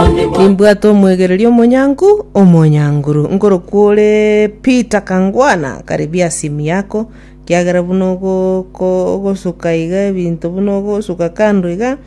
Nimbwate omwegereri omonyangu, omonyanguru, nkorokwa ore Peter Kangwana, karibia esimu yako, kiagera buna ogoko ogosuka iga ebinto buna ogosuka kando iga,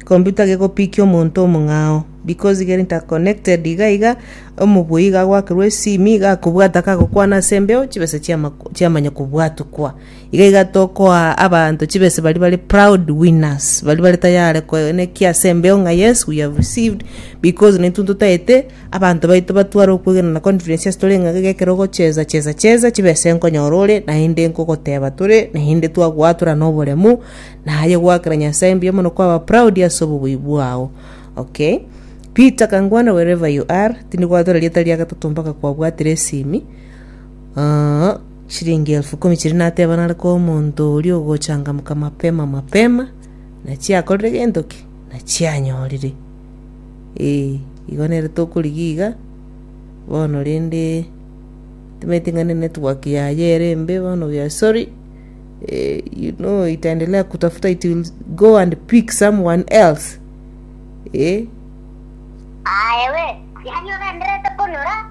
computer gegopikia omonto omong'ao, because igere interconnected iga iga, omobui iga agoakerwa esimi iga akobwata kagokwana ase embeo, chibesa chiama chiamanya kobwatukwa. Iga iga tokoa abanto chibesa baria bare proud winners, baria bare tayare ko- ne ki ase embeo ng'a yes we have received because naintwe ntotaete abanto baito batware okwegena na confidence ase tore ng'a iga ekero ogochesa chesa chesa chibesa enkonyora ore naende nkogoteba tore naende twagoa tore na oboremu naye goakera Nyasaye mbuya mono kwaba proud ase obobui bwao. Okay. Peter Kangwana wherever you are, tindi goatora rieta ria gatato mpaka kwabwatire esimi. Aah. Chiringi elfu ikomi chiria natebanare koa omonto oria ogochangamoka mapema mapema, nachiakorire gento ki? Nachianyorire. Ee, igo nere tokorigia iga, bono rende timanyeti ng'a ne network yaye ere embe bono we are sorry. Eh, you know itaendelea kutafuta it will go and pick someone else. Eh, Aye we, yaani ogendererete konyora